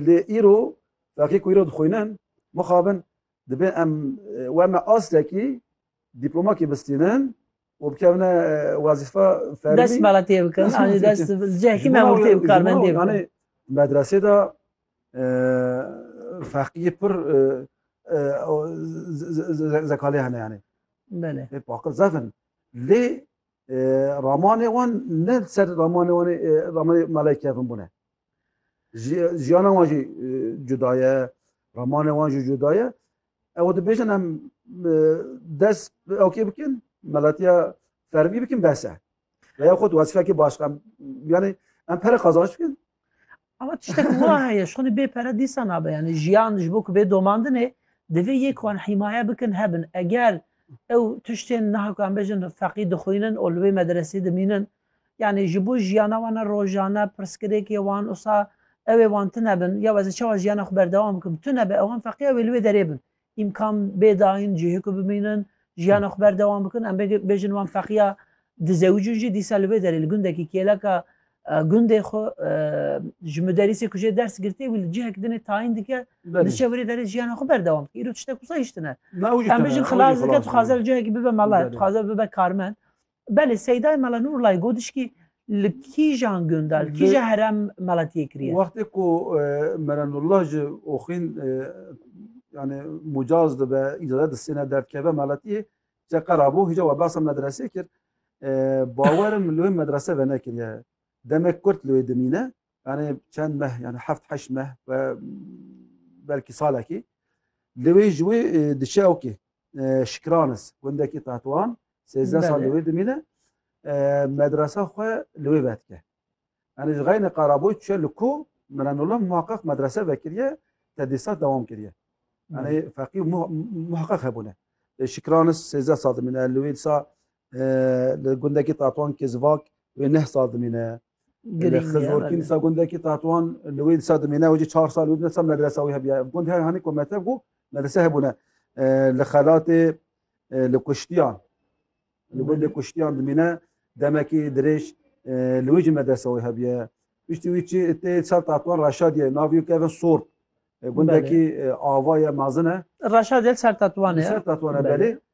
Lê îro vekê ku îro dixwînin mixabin dibê em we me astekî dîplomakî bistînin û bikevne wezîfa fermî. Dest bala tê bikin. Anî dest cehkî me wê tê karmendê bikin. Anî medresê de feqîyê pir zekalê hene yani. Bele. Hep akıl zafın. Lê ramanê wan ne ser ramanê wan ramanê malay kevin bune. Jiyana wan jî cuda ye, ramanê wan jî cuda ye. Ew dibêjin em dest ew kê bikin, melatiya fermî bikin bese. Veya xwe wezifekê baş em yani em pere qazanç bikin. Ama tiştek wa heye, ji xwe bê pere dîsa nabe. Yani jiyan ji bo ku bê domandinê divê yek wan hîmaye bikin hebin. Eger ew tiştên niha ku em bêjin feqî dixwînin û li wê medresê dimînin Yanî ji bo jiyana wan a rojane pirsgirêkê wan wisa ew ê wan tune bin, ya ez ê çawa jiyana xwe berdewam bikim? Tune be ewan feqîya wê li wê derê bin. Îmkan bê dayîn cihê ku bimînin, jiyana xwe berdewam bikin. Em bêjin wan feqîya dizewicin jî dîsa li wê derê li gundekî kêleka gundê xwe ji muderîsê ku jê ders girtiye wî li cihek dinê tayîn dike diçe wê derê jiyana xwe berdewam bike. Îro tiştek wisa hîş tune. Em bêjin xilas dike, dixwaze li cihekî bibe mele, dixwaze bibe karmend. Belê Seydayê Mela Nurlayê got dişkî li kîjan gunda, li kîja herem meletiyê kiriye? Wextê ku Mela Nurla ji Oxîn yani mucaz dibe, îcazet distêne derdkeve meletiyê, ca qera bû hîja we behsa medresê kir. Bawerim li wê medrese venekiriye. Demek kurt li wê dimîne, yani çend meh yani heft heşt meh ve belkî salekî li wê ji wê e, diçe okê e, şikranis gundekî Tetwan sêzdeh sal li wê dimîne e, medresa xwe li wê vedike yani ji xeyne qaraboy çe li ku mirenullah muhaqqaq medrese vekiriye tedîsat dewam kiriye yani feqî muhaqqaq hebûne şikranis sêzdeh sal dimîne li wê disa Li gundekî Tatoan Kezvak wê neh sal dimîne. Girîng Xiz ye, Orkîn belê. disa gundekî Tatoan li wê disa dimîne û jî çar sal wê disa medresa wî hebiya. Ev gund her hanî ku metev bû medrese hebûne. Li xelatê li kuştiyan li gundê kuştiyan dimîne demekî dirêj li wê jî medresa wê hebiye. Piştî wî çi tê sal Tatoan Reşadiye navê wî keve Sor. Gundekî ava ye mezin e. Reşadiye li ser Tatoan Li e. ser Tatoan e Belê. belê.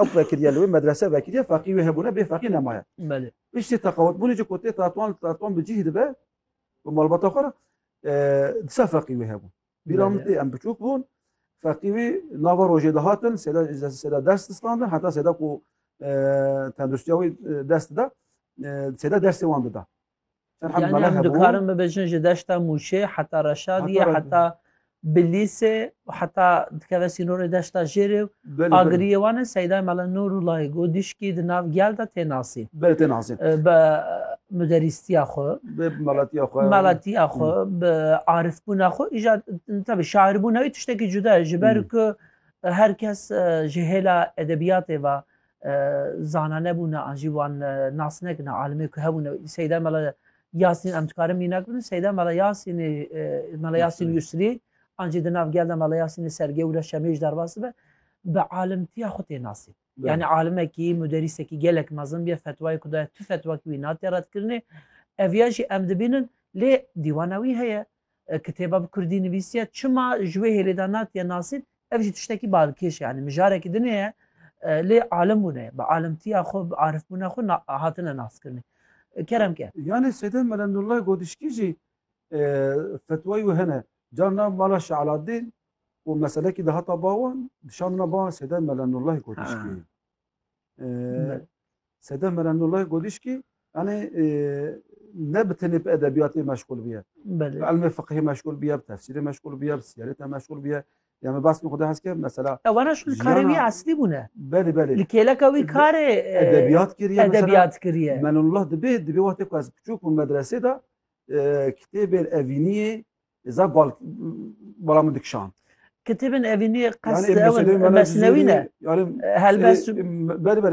Ew vekiriye li wê medrese vekiriye feqî wê hebûne bê feqî nemaye. Belê. Piştî teqawetbûnê ji ku tê tatuan li tatuan bi cîh dibe bi malbata xwe re disa feqî wê hebû. Bîra min tê em biçûk bûn feqî wî nava rojê dihatin sêda sêda ders distandin heta sêda ku tendirustiya wî dest dida sêda dersê wan dida. Yani em dikarin bibêjin ji deşta Mûşê heta Reşadiyê heta Bilîsê û heta dikeve sînorê deşta jêrê û agiriyê wan e Seyda Mele Nûr û Layê Go dîşkî di nav gel de tê nasîn. Belê tê nasîn. Bi muderîstiya xwe, bi melatiya xwe, melatiya xwe, bi arifbûna xwe, îja tabi şairbûna wî tiştekî cuda ye ji ber ku her kes ji hêla edebiyatê ve zana nebûne an jî wan nas nekine alimê ku hebûne seyda mela Yasîn em dikarin mînak bidin seyda mela Yasînê mela Yasîn Yusrî an jî di nav gel de mela Yasînê sergewre şemêj derbas be bi alimtiya xwe tê nasî yani alimekî muderîsekî gelek mezin bê fetwayê ku daya tu fetwa wî nate redkirinê ev ya jî em dibînin lê dîwana wî heye Kitêba bi kurdî nivîsiye. Çima ji wê hêlê de natiye nasîn? Ev jî tiştekî balkêş e. Yanî mijarekî din heye lê alim bûne ye. Bi alimtiya xwe, bi arifbûna xwe hatine naskirinê. Kerem ke. Yanî Sêde Mele Nurlay Godişkî jî fetwayî wê hene. Carna mala Şeh Aladîn û meselekî dihata ba wan, dişandina ba wan Sêde Mele Nurlay Godişkî. Sedef Meremnullah Godişkî yani ne bi tenê bi edebiyatê meşgul biye. Bi elmê fiqhê meşgul biye, bi tefsîrê meşgul biye, bi siyaretê meşgul biye. Yani bas min xwedê hes ke mesela. Ewana şûn karê wî eslî bûne. Belê belê. Li kêleka wî karê edebiyat kiriye. Edebiyat kiriye. Meremnullah dibê dibê wextê ku ez biçûk bûm medresê de kitêbên evîniyê Zaf bal bala min dikşand. Kitêbên evînî qes mesnewî ne. Helbest berber